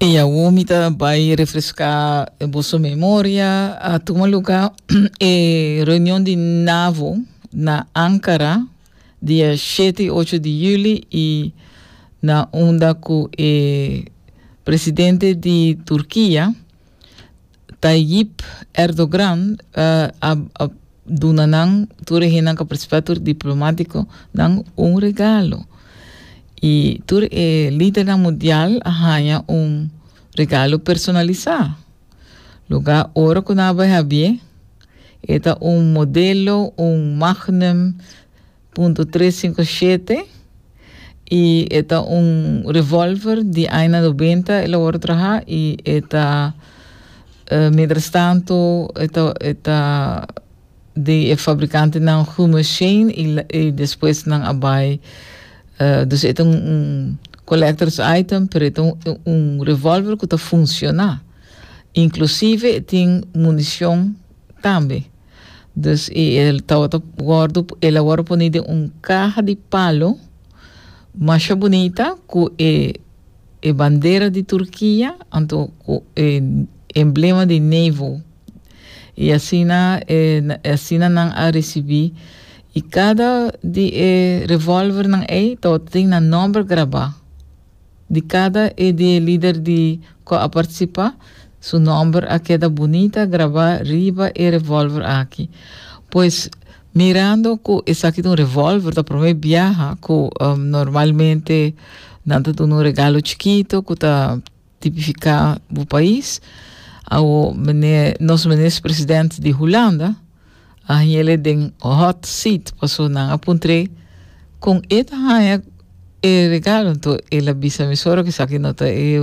E awor mi ta bai refreská boso memoria. A tuma lugá e reunion di NAVO na Ankara dia shete i ocho di juli i na unda ku e presidente di Turkia, Tayyip Erdogran a duna nan tur e hennan ku a partisipá, tur e diplomatiko nan un regalo. I tur e lidernan mundial a haña un regalo personalisá. Lugá ora ku nan a bai habié, e ta un modelo, un magnum, Punto tres sinku shete i e ta un revòlver di aña nobenta el a wòrdu trahá i e ta mientrastantu e ta e ta di e fabrikantenan Hummel Shane i i despues nan a bai dus e ta un un collectors item pero e ta un un revòlver ku ta funshoná inklusive e tin munishon. tambe. Dus i e tawata wòrdu, el a wòrdu poni den un kaha di palo masha bunita ku e e bandera di Turkia, anto ku e emblema di NAVO. I asina e asina nan a risibí. I kada di e revòlvernan ei tawata tin nan nòmber grabá. Di cada e di e lider di cu a participa, su nomber a keda bunita graba riba e revolver aki. Pues, mirando cu esaki ta un revolver, ta prome biaha cu normalmente nan ta duna un regalo chikito cu ta tipifica bo pais. Awo, meneer, nos meneer is president di Hulanda, a hañele den hot seat paso nan a puntré con e ta haña e regalo anto el a bisa mi suero que saki no ta e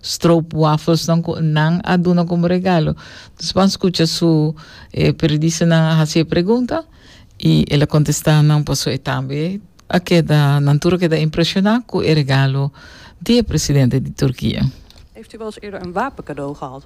stroop waffles nan cu nan a duna como regalo dus pan scucha su e periodista nan a haci e pregunta y el a contesta nan paso e tambe a keda nan tur a keda impresiona cu e regalo di e presidente di Turquia. Heeft u wel eens eerder een wapen cadeau gehad?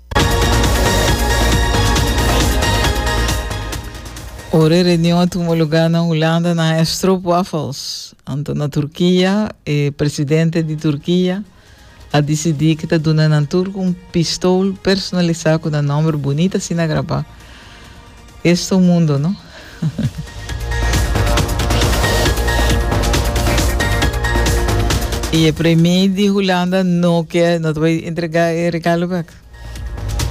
Ora e reunion a tuma lugar na Hulanda na e stroopwafels. Anto na Turquia, e presidente di Turquia a decidi que ta duna nan turco un pistol personalizado con nan nombre bonita sina graba. Esto un mundo no. Y e premier di Hulanda no ke no ta bay entrega e regalo bek.